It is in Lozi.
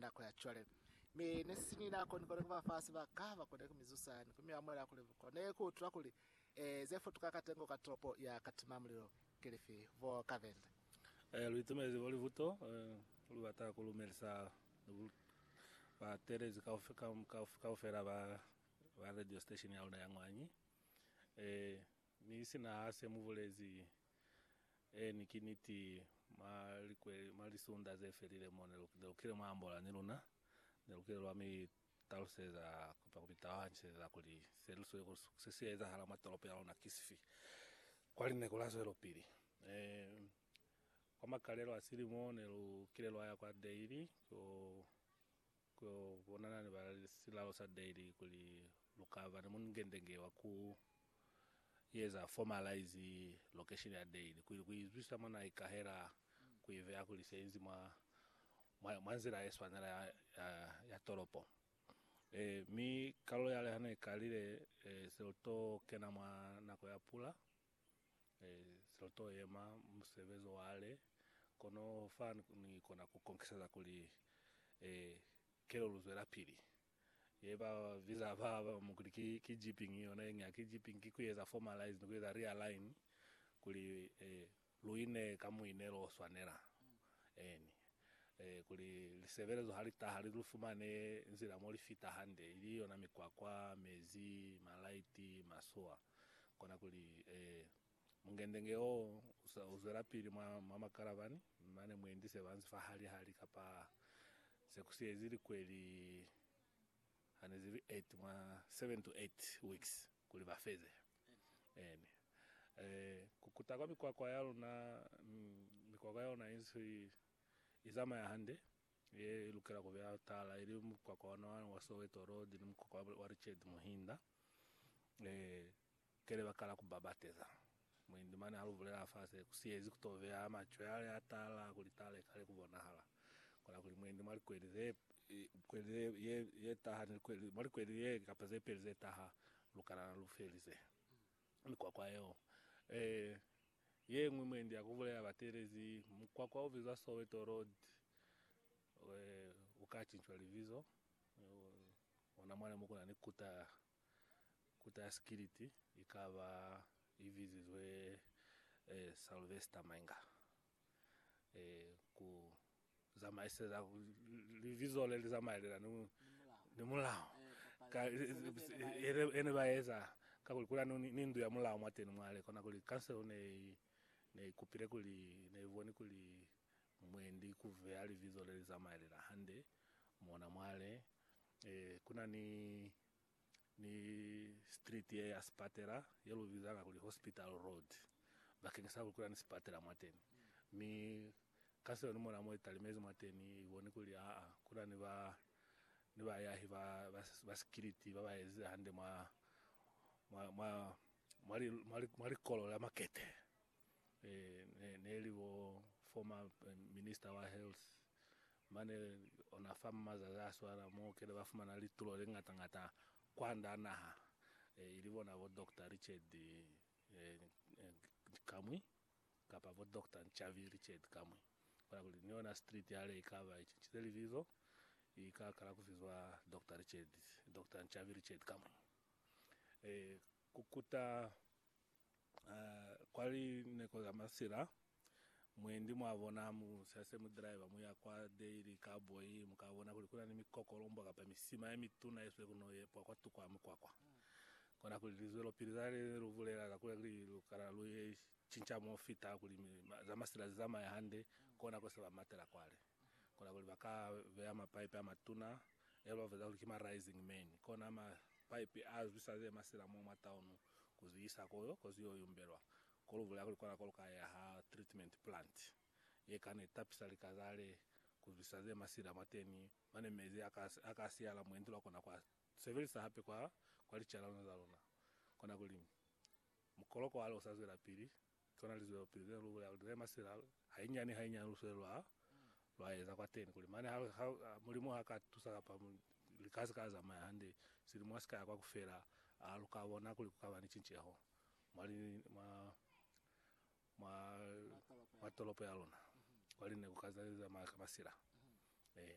nako ya cwale. Mi nesisini nako nikone kuba fa sibaka bakone kumizusa ni kumiamuela kuli bakone kuutula kuli, eh, zefutuka katengo ka tolopo ya katima mulilo kilifi. Bo Kavenda. Eh, luitemezi bo libuto, eh, lubata kulumelisa batelezi kaufela ba, ba radio station yaluna ya Ngwanyi. Eh, Mi sina ha se mu bulezi, Eeni, ki niti, mwa likweli, mwa lisunda ze felile mo, ne lu, ne lu kile mwa ambola ni luna, ne lu kile lwa mi taluseza, kamba ku mi taluhaniseza kuli se lu sweli, kuli se si ezahala mwa tolopo ya luna ki sifi, kwa linako la zwelopili. E, kwa makalelo a silimo ne lu kile lwa ya kwa Daly, ko, Ku yo bonana ni ba silalo sa Daily kuli lu ka ba ni mungendenge wa ku eza formalize location ya Daily kuili ku izwisisa mwa na ikahela ku iveya kuli se inzi mwa mwa mwa nzila ye swanela ya ya, ya tolopo. E, mi kalo yale ha ne ikalile, e, se lu to kena mwa nako ya pula. Zilo to yema musebezi wa le, kono fa ni kona ku konkiseza kuli kelo lu zwelapili. Ye ba biza ba bamu kuli ki, ki jipping, yona yeñwi ha ki jipping, ki kueza formalize ni kueza realign kuli lu ine ka muine lo swanela. Eeni. Kuli lisebelezo ha li taha, li lu fumane nzila mo li fita hande, ili yona mikwakwa, mezi, malaiti, masowa. kona kuli, Ee, mungendenge oo usa uzwelapili mwa, mwa makalavani, mane muendise banzi fa hali hali, kapa se kusiezi likweli, hanezibi eight, mwa seven to eight weeks, kuli bafeze. Amen. Ee, kukuta kwa mikwakwa yaluna, mm, mikwakwa yaluna insi izamaya hande. Ye lukela ku ba tala ili mukwakwa ona wa, wa Soweto Road ni mukwakwa wa, wa Richard Muhinda. E, ke le ba kala ku ba bateza. Muindi mane ha lu bulela fase, ku siyezi ku to beha macwe ale a tala kuli tala i kale ku bonahala. Kola kuli muindi mwa likweli ze, e, kweli ze, ye, ye taha ni likweli, mwa likweli ye kapa ze peli ze taha, lukana lu felize mikwakwa yeo. E, Ye ñwi mwendi ya ku bulela batelezi, Mukwakwa o bizwa Soweto Road u ka cincwa libizo. Ona mwale mo ku na ni kuta, kuta ya sikiliti i ka ba i bizizwe Sylvester Mainga. Ku zamaiseza libizo le li zamaelelani ni mulao ka ene ba eza ka kuli kuna ni ndu ya mulao mwa teni mwale kona kuli kanselo ne ne kupile kuli ne boni kuli mwendi ku veya libizo le li zamaelela hande mona mwale eh kuna ni ni street ye ya sipatela ye lu bizanga kuli Hospital Road bakeng sa kuli ni sipatela mwateni, mi ka seo ni mona mo i talimezi mwateni, i boni kuli aa kuna ni ba ni bayahi ba ba sikiliti ba ba ezize hande mwa mwa mwa mwa likolo la makete. eh, ne li bo former eh, minister wa health mane ona fa mazazi a swala mo kele ba fumana litulo le ngata ngata kwanda naha eh, ili bona bo Dr Richard eh, eh, Kamwi kapa bo Dr Nchavi Richard Kamwi bona kuli ni yona street yale ikaba ichichile libizo ikakala kufizwa Dr Richard Dr Nchavi Richard Kamwi eh, kukuta Kwa lineko za masila, mwendi mwa bona mu sa se mu driver mu ya kwa Daily Cowboy, mu ka bona kuli ku na ni mikokolombwa kapa misima ye mituna ye swe ku no yepwa kwa tuku ya mukwakwa. Kona kuli lizwelopili za le lu bulela za kuli kuli lu kana lu ye cinca mo fita kuli mi, ma, za masila zi zamaye hande, kona ko se ba matela kwale. Kona kuli ba ka beya mapaipi a matuna, e lu ba biza kuli ki ma rising man, kona mapaipi a zwisa ze masila mo mwa taunu. ku zwi isa ko yo, ko zwi yo yumbelwa, ko lu bulela kuli kona ko lu ka yaha treatment plant ye kani tapisa lika za le, ku zwisa ze masila mwateni, mane mezi a ka, a ka siyala mwendi lwa kona ku a sebelisa hape kwa, kwa licalano za luna. Kona kuli, mukoloko wa le u sa zwelapili, Tona lizwelopili ze lu bulela kuli ze masila hainyani hainyani lu sweli lwa lwa eza kwateni kuli mane ha, ha Mulimu ha ka tusa kapa li ka si ka zamaya hande silimo ha si ka ya kwa kufela, a lu ka bona kuli ku ka ba ni cinceho mwa li, mwa, mwa, mwa tolopo ya luna kwali ne ku ka zamaya ka masila? Ee.